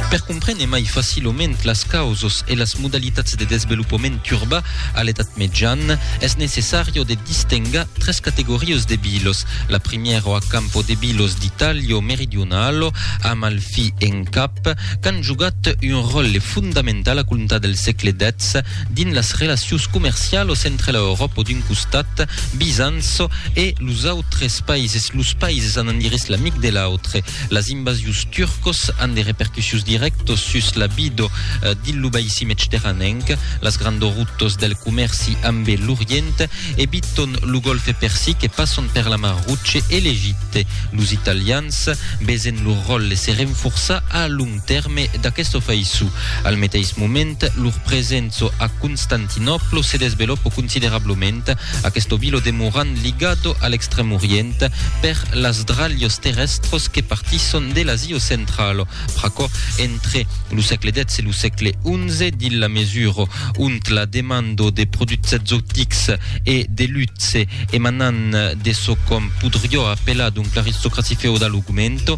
Per comprene mai facilament las causos e las modalitats de desvelopament urba a l'edat mejan, es necessario de distenga tres categorios de vilos. La primièro a campo de vilos d'Italio meridionalo, Amalfi en cap, qu'an jogat un ròlle fondamental a comptar del sègle xix, Dins las relacions comercialos entre la Euròpa d'un costat, Bizanço, e los autres païses, los païses anant dirès l'amic de l'autre, las invasions turcos an de repercussions dirèctos sus la vido dins lo baissi medterranenc, las grandos routes del comèrci ambe l'Orient eviton lo Golfe Persic e passon per la Mar Roche e l'Egipte. Los Italians, vesent lor ròtle se renforçar, a tèrme d'aqueste ofèiço. Al meteis moment, lor presenço a Constantinòplo se desvelòpo considerablament, aqueste vilo demorant ligado a l'Extrèm Orient per las dralhos terrèstros que partisson de l'Asia Centrala. Pr'aquò, entre lo sègle xix e lo sègle xi, dins la mesura ont la demanda de produchs exotics e de luxe emanant de çò qu'òm podriá apelar donc l'aristocracia feodala augmenta,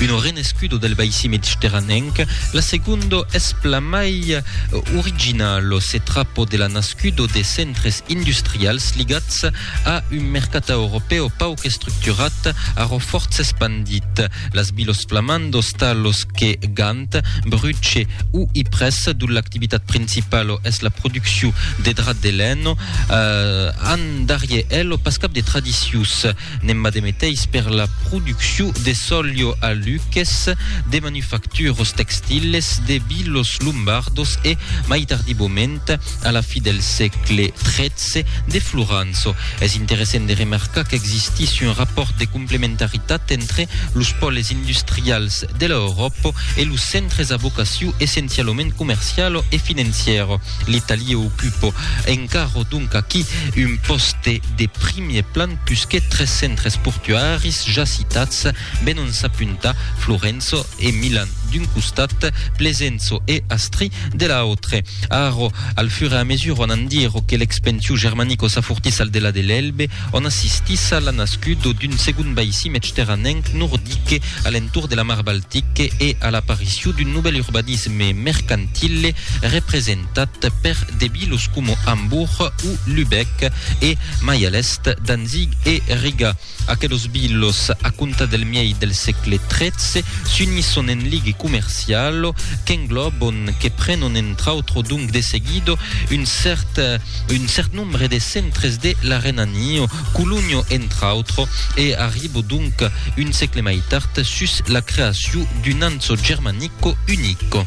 Uno renescudo del baissi mediterranenc, la segundo es plan mai original, lo se trapo de la nascudo de centres industrials ligats a un mercat europèu pauc estructurat arrò fòrts espandit. Las vilos flamandos talos que Gant, Bruche o Ypres, dont l'activitat principalo es la producciu de drap de lèn, an darrier elo pas cap de tradicius. N'en va de meteis per la producciu de sòlio a Luques, de manufacturos textiles, de vilos lombardos e, mai tardivament, a la fi del sègle XIII, de Floranço. Es interessent de remarcar qu'existís un rapòrt de complementaritat entre los pòles industrials de l'Euròpa e los centres a vocaciu essencialament comerciala e financièra. L'Italie ocupo encara donc aquí un pòste de primier plan pusque tres centres portuaris ja citats venon s'apuntar, Florenço e Milan d'un costat, Plesenço e Astri de l'autre. Aro, al fur e a mesura, on en diro que l'expensiu germanico s'afortís al delà de l'Elbe, On assistís a la nascudo d'un segond baissi medterranenc nordique a l'entorn de la mar Baltique e a l'aparicion d'un novèl urbanisme mercantile representat per de vilos coma Hamburg o Lübeck e, mai a l'èst, Danzig e Riga. Aquelos vilos, a comptar del miei del sègle XIII, s'unisson en ligue comercialo qu'englòbon, que prenon entre autres donc de seguido un cèrt, un cèrt, membre des centres de la Renanio, Colugno entre autres, e arribo donc un sècle mai tard sus la creacion d'un anso germanico unico.